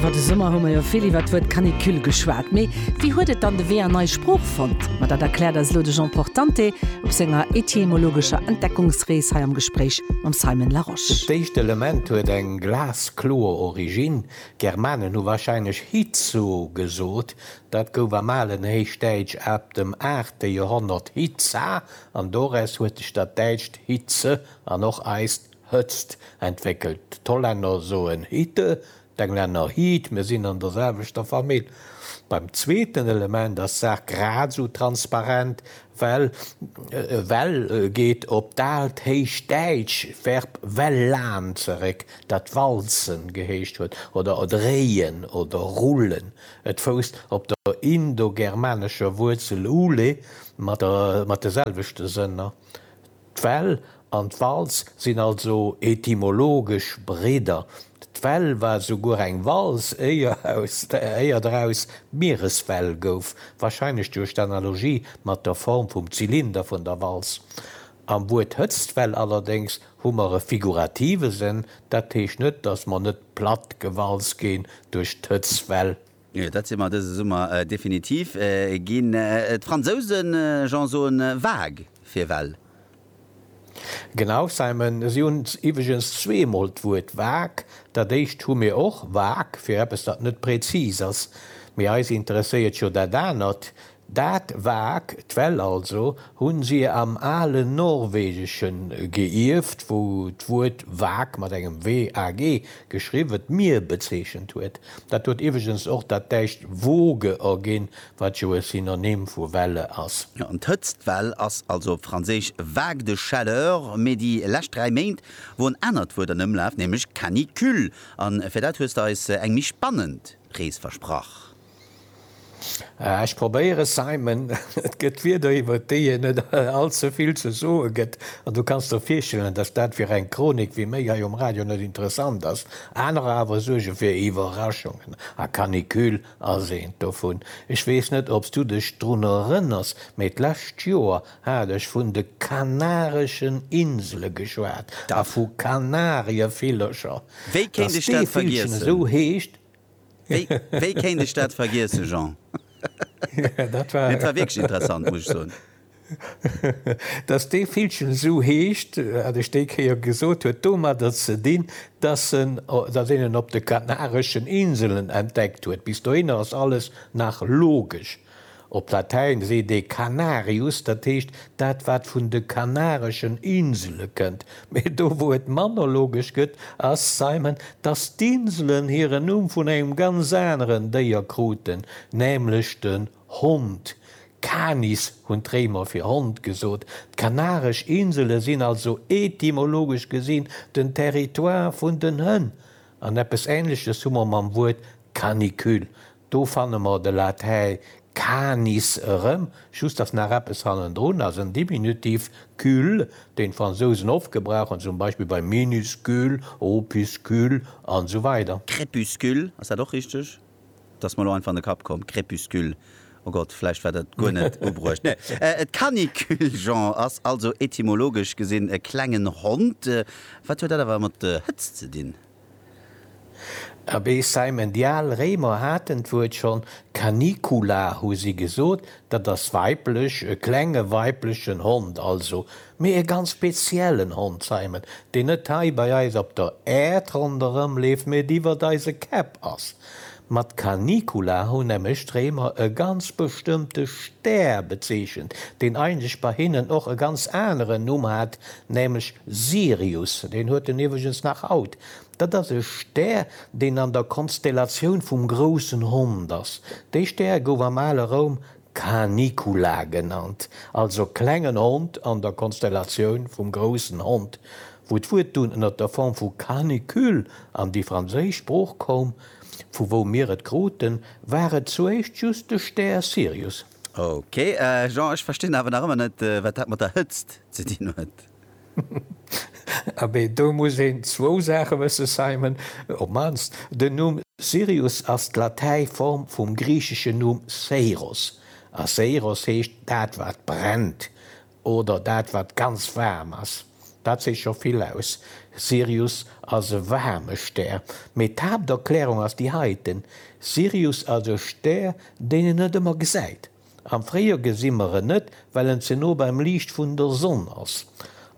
Iwwer de Summer hu mer jo vill iwwer d'Wuert Canicule geschwat. Mee wéi huet et dann de Wee an eis Sprooch fonnt? Ma dat erkläert eis elo de Jean Portante op senger etymologescher Entdeckungsrees hei am Gespréich mam Simon Larosche. D'éischt Element huet eng glaskloer Originn, D'Germanen hu warscheinlech hitso gesot. Dat gouf am alen Héichdäitsch ab dem aachte Joerhonnert hitsa an doraus huet sech dat däitscht hitze an och eist Hëtzt entwéckelt, d'Hollänner soen Hitte, d'Englänner Heat, mir sinn an der selwechter Famill. Beim zweeten Element ass d'Saach grad esou transparent, well well geet op d'alt héichdäitsch Verb welllan zeréck, dat walzen geheescht huet oder dréien oder rullen. Et fousst op der indogermanescher Wuerzel ule mat de selwechte Sënner. D'Well an d'Walz sinn also etymologesch Bridder. D'Well war souguer eng Walz, éier draus d'Miereswell gouf, wahrscheinlech duerch d'Analogie mat der Form vum Zylinder vun der Walz. Am Wuert Hëtztwell allerdéngs hu mer e figurative Sënn, dat heescht net, dass mer net platt gewalz ginn duerch d'Hëtztwell. Jo, dat si mer dëse Summer definitiv ginn. D'Fransousen, Jean, soen vague fir well. Genau, Simon, si hunn iwweregens zweemol d'Wuert vague. Dat éischt hu mir och, vague, fir eppes, dat net prezis ass. Mee eis interesséiert jo dat anert, Dat vag, d'Well also, hu si am alen Norwegesche geierft, wou d'Wuert vag, mat engem WAG geschriwwen, d'Mier bezeechent huet. Dat huet iwweregens och dat däitscht Woge erginn, wat jo e Synonym vu Welle ass. Jo, an d'Hëtztwell ass also op Franséisch vague de chaleur. Mee déi lescht dräi Méint wor en anert Wuert an Ëmlaf, nämlech canicule. A fir dat hues de eis eng méi spannend Rees versprach. Ech probéieren, Simon. Et gëtt Wierder, iwwer déi een net allze vill ze soe gëtt. An du kanns der virstellen, datt dat fir eng Chronik wéi méi hei um Radio net interessant ass. Anerer awer suerge fir Iwwerraschungen. A Canicule ass eent dovun. Ech weess net, ob s du dech drun erënners, mee d'lescht Joer hat ech vun de Kanareschen Insele geschwat a vu Kanarievillercher. Wéi kéint ech dat vergiessen? Wéi kéint ech dat vergiessen, Jean? Mee dat war wierklech interessant, muss ech soen. Dass dee Villchen esou heescht, wat ech déi Kéier gesot huet, domadder ze dinn, dass een en op de Kanareschen Inselen entdeckt huet. Bis dohinner ass alles nach logesch. Op Latäin seet ee Canarius, dat heescht dat wat vun de Kanareschen Insele kënnt. Mee do wou et mann ologesch gëtt, ass Simon, datt d'Inselen hiren Numm vun engem ganz aneren Déier kruten, nämlech den Hond. Canis hunn d'Réimer fir Hond gesot. D'Kanaresch Insele sinn also etymologesch gesinn den Territoire vun den Hënn. An eppes Ähnleches hu mer mam Wuert Canicule. Do fanne mer de Latäi canis erëm, just dass nach eppes hannendrun ass, en Diminutiv cul, deen d'Fransousen oft gebrauchen, zum Beispill bei minuscule, opuscule, an esou weider. Crépuscule, ass dat och richteg? Dat ass mer elo einfach an de Kapp komm, Crépuscule, o Gott, vläicht war dat guer net ubruecht. Et Canicule, Jean, ass also etymologesch gesinn e klengen Hond. Wat huet dat awer mat der Hëtzt ze dinn? Abee, Simon, déi al Réimer haten d'Wuert schonn, canicula hu si gesot, dat ass weiblech, e klenge weiblechen Hond also. Mee e ganz speziellen Hond, Simon, deen net hei bei eis op der Äerd ronderëm leeft, mee et iwwert eise Käpp ass. Mat Canicula hunn nämlech d'Réimer e ganz bestëmmte Stär bezeechent, deen eigentlech bei hinnen och e ganz aneren Numm hat, nämlech Sirius. Deen huet en iwwregens nach haut. Dat ass e Stär, deen an der Konstellatioun vum groussen Hond ass. Dee Stär gouf am ale Roum Canicula genannt, also klengen Hond an der Konstellatioun vum groussen Hond. Wou d'Wuert dunn ënner der Form vu canicule an déi franséisch Sprooch koum, vu wou mir et kruten, war et zuéischt just de Stär Sirius. Ok, Jean, ech verstinn awer nach ëmmer net, wat dat mat der Hëtzt ze dinn huet. Abee, do muss een zwou Saache wëssen, Simon, op mannst den Numm Sirius ass d'Latäiform vum griicheschen Numm Seiros, a Seiros heescht dat wat brennt, oder dat wat ganz waarm ass. Dat seet scho vill aus, Sirius ass e waarme Stär. Mee d'Haapterklärung ass déi heiten, Sirius ass e Stär, deen een net ëmmer gesäit. Am Fréijoer gesi mer en net, well en ze no beim Liicht vun der Sonn ass.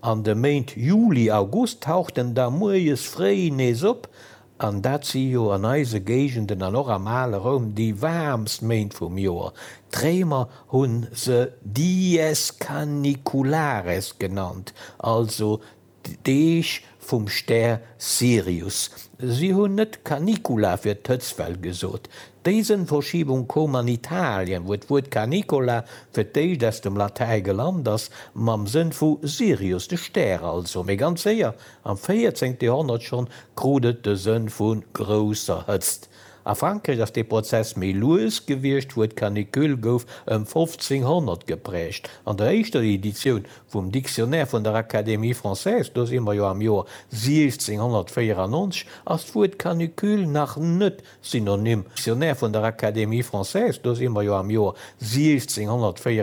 An de Méint Juli, August taucht en da muerjes fréi nees op, an dat si jo an eise Géigenden an och am ale Roum déi waarmst Méint vum Joer. D'Réimer hu se dies caniculares genannt, also D'Deeg vum Stär Sirius. Si hunn net Canicula fir d'Hëtztwell gesot. Déi Sënnverschiebung koum an Italien, wou d'Wuert Canicola fir d'éischt aus dem Latäi gelant ass, mam Sënn vu Sirius, de Stär also. Mee ganz séier, am véierzéngte Joerhonnert schonn, krut et de Sënn vu grousser Hëtzt. A Frankräich ass dee Prozess méi lues gewiescht, d'Wuert Canicule gouf ëm 1500 gepräägt an der éischter Editioun Vum Dictionnaire vun der Académie française, do si mer jo am Joer 1694, ass d'Wuert Canucule nach net synonym. Dictionnaire vun der Académie française, do si mer jo am Joer 1694.